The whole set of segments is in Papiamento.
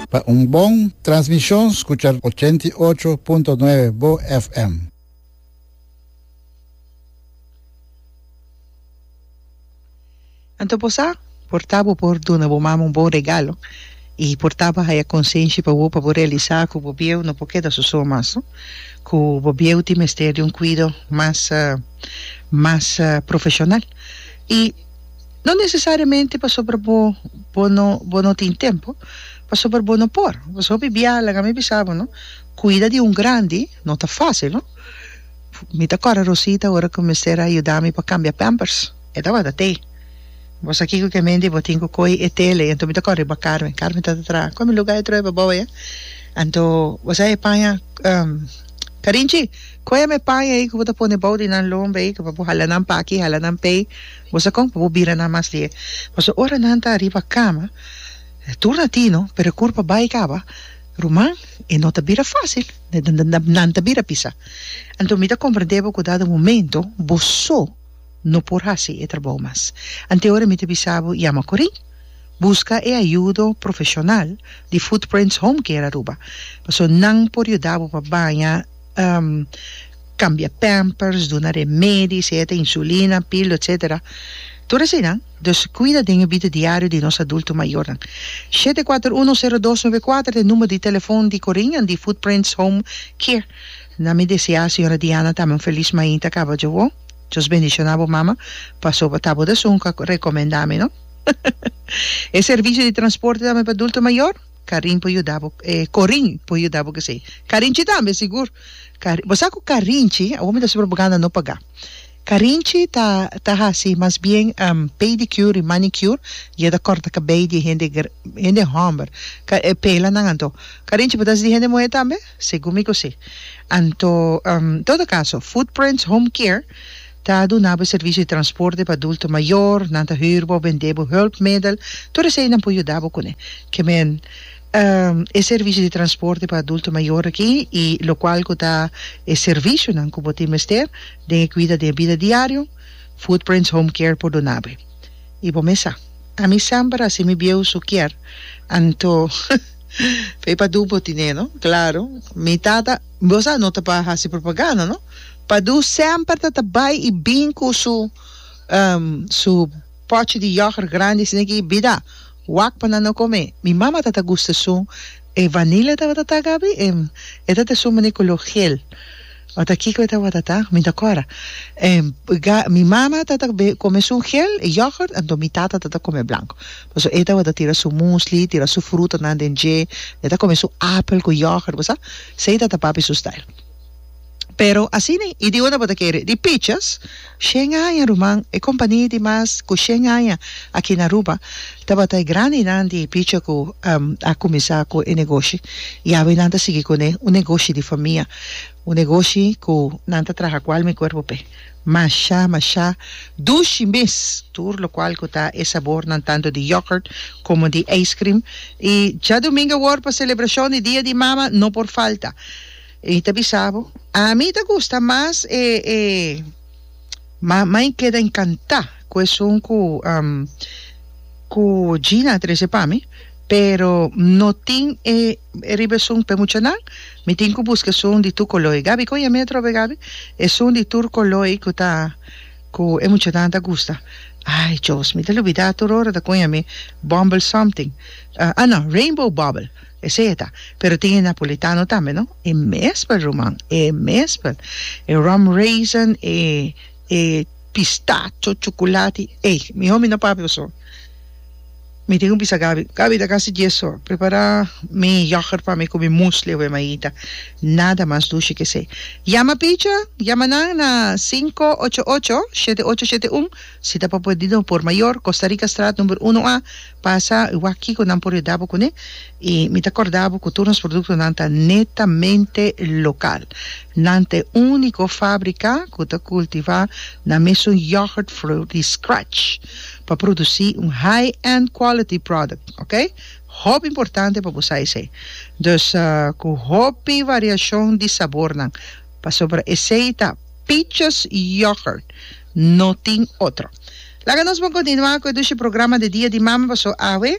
Pa un bon transmishon skucha ochenta i ocho punto nuebe bo FM. Anto bo sa, por ta bo por duna bo mama un bon regalo i por ta bo haya konsenshi pa bo pa bo realisá ku bo bieu no por keda sosó mas, ku bo bieu tin mester di un kuido mas mas profeshonal i. No nesesariamente pasobra bo bo no bo no tin tempu pasobra bo no por pasobra hopi biaha laga mi bisa bo no cuida di un grandi no ta facil no mi ta acorda Rosita ora cu mester a yuda mi pa cambia pampers e tabata te bo sa kico ke mente bo tin cu coi e tele anto mi ta corri bak Carmen, Carmen ta ta traha con mi luga e true pa bobo e anto bo sa e paña Carinchi. Kua e mepaña ei ku bo ta pone bou di nan lomba ei, ku pa bo hala nan pa aki, hala nan p'ei, bo sa kon? Pa bo bira nan mas die. Pasobra ora nan ta riba kama, e tur na tino, pero e kurpa bai kaba. Ruman, e no ta bira fásil, nan ta bira pisa. Anto mi ta komprendé bo ku dado momento bo so no por hasi e trabou mas. Anto ora mi ta bisa bo yama Corine, buska e ayudo profeshonal di Footprints Home Care Aruba, pasobra nan por yuda bo pa baña. cambia pampers, duna remedis, eta insulina, pil, etcetera, tur asinan, dus cuida den e bida diario di nos adulto mayornan. Shete kuater uno sero dos nove kuater ta e number di telefon di Corinne di Footprints Home Care. Na mi desea Señora Diana tambe un feliz mainta caba djo bo. Dios bendiciona bo mama paso bo ta bo esun cu a recomenda mi no. E servicio di transporte tambe pa adulto mayor. Karin por yuda bo e Korin por yuda bo kesey Karinchi tambe sigur Karin bo sa ku Karinchi awor mi ta hasi propaganda no pagá Karinchi ta ta hasi mas bien pedicure y manicure y e ta kòrta kabei di hende hende hòmber ka e pela nan anto Karinchi bo ta hasi di hende muhé tambe? Segun mi ku si. Anto, en todo kaso, Footprints Home Care ta duna bo e servisio di transporte pa adulto mayor, nan ta hür bo, bendé bo hùlpmedel, tur esei nan por yuda bo kuné. Ke men, e servisio di transporte pa adulto mayor aki i lokual ku ta e servisionan ku bo tin mester den e kuida den e bida diario, Footprints Home Care por duna bo e. I bo mes sa, ami semper a hasi mi bieu su kier, anto. P'ei Padu bo tine no? Claro, mi tata, bo sa no ta pa haci propaganda no, Padu semper ta ta bai y bin cu su su pochi di yoghurt grandi asina aki, bida, wak pa nan no come. Mi mama ta ta gusta esun e vanilla tabata ta gabi e ta ta esun mane color geel. Ota kiko e tabata ta? Mi ta kora en ga mi mama tata be kome su gel e yoghurt anto mi tata tata kome blanco paso e tabata tira su musli tira su fruta nan den dje e ta kome su apel ku yoghurt bo sa sei tata papi su style pero asina i di un tabata kere di pichas Shen aña ruman e kompania di mas ku shen aña aki na Aruba tabata e grandinan di picha ku a kuminsá ku e negoshi i awe nan ta sigui kuné un negoshi di famia un negoshi ku nan ta traha ku alma i kuerpo p'e masha masha dushi mes tur lokual ku ta e sabornan tantu di yogurt komo di ijskrim i djadumingu awor pa selebrashon di dia di mama no por falta. I ta bisa bo, Ami ta gusta mas e e ma mai keda encantá ku esun ku ku Gina a trese pa mi, pero no tin e e riba esun p'e muchanan, mi tin ku buska esun di tur koloi. Gabi, kon yami e trobe Gabi? Esun di tur koloi ku ta ku e muchanan ta gusta. Ai Jos, mi ta lubidá tur ora ta kon yami Bumble something, ah no, Rainbow bubble. Esei e ta. Pero tin e napolitano tambe no. E mespel ruman. E mespel. E rum raisin, e e pistacho, chukulati. Ey, mi homie no papia paso mi tin cu bisa Gaby, Gaby ta casi dies so prepara mi yoghurt pa mi cu mi muesli awe maita. Nada mas dushi que esei. Yama picha, yama nan na cinco ocho ocho, shete ocho shete un, si ta pa por di no por mayor, Costa Rica straat number uno A, Pasa y wak kiko nan por yuda bo kuné y mi ta korda bo ku tur nos produktonan ta netamente lokal. Nan ta e úniko fábrika ku ta kultivá nan mesun yogurt vloer di scratch pa produsí un high-end quality product, oké. Hopi importante pa bo sa esei. Dus ku hopi variashon di sabornan pasobra esei ta Pietjes Yogurt, no tin otro. Laga nos bon kontinuá ku e dushi programa di Dia di Mama paso awe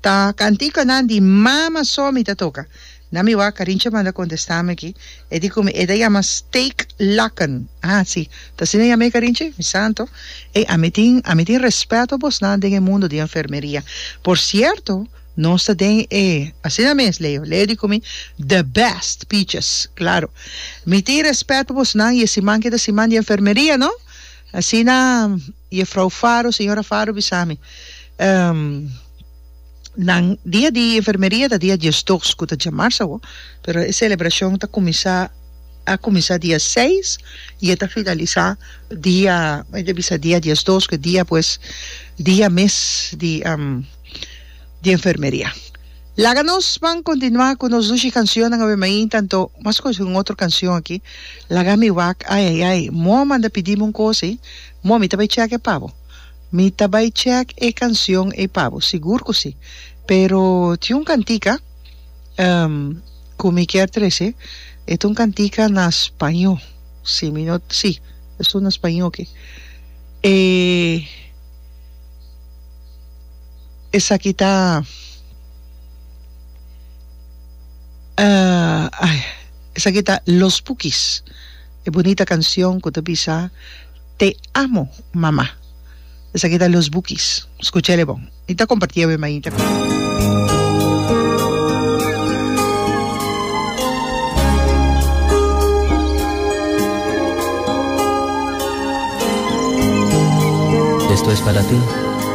ta kantikonan di mama so mi ta toka. Na mi wak Karincha a manda kontestá mi aki, e di ku mi e ta yama steak laken. A si, ta asina yama e Karinchi? Mi santo. Ey, ami tin ami tin respeto bosnan den e mundo di enfermeria. Por sierto, nos ta den e, asina mes Leo, Leo di ku mi, the best piches. Klaro. Mi tin respet pa bosnan i e siman ke ta siman di enfermeria, no? Asina Jefrouw Faro, Señora Faro, bisa mi, Nan dia di enfermeria ta dia diesdos ku ta djamars awo, pero e selebrashon ta kuminsá, a kuminsá dia seis i e ta finalisá dia, mi ta bisa dia diesdos ku e dia pues dia mes di enfermeria. Laga nos ban continua cu nos dushi cancionnan awe mainta anto mas scoge un otro cancion aki laga mi wak ai ai ai moa manda pidimi un cosa ei moa mi ta bay check e pa bo mi ta bay check e cancion ei pa bo sigur cu si pero tin un cantica cu mi kier trece e ta un cantica na spaño si mi no si es un na spaño oke e. Esaki ta esaki ta Los Pukis e bunita kansyon ku ta bisa Te amo mama esaki ta Los Bukis skucha el e bon mi ta kompartí awe mainta.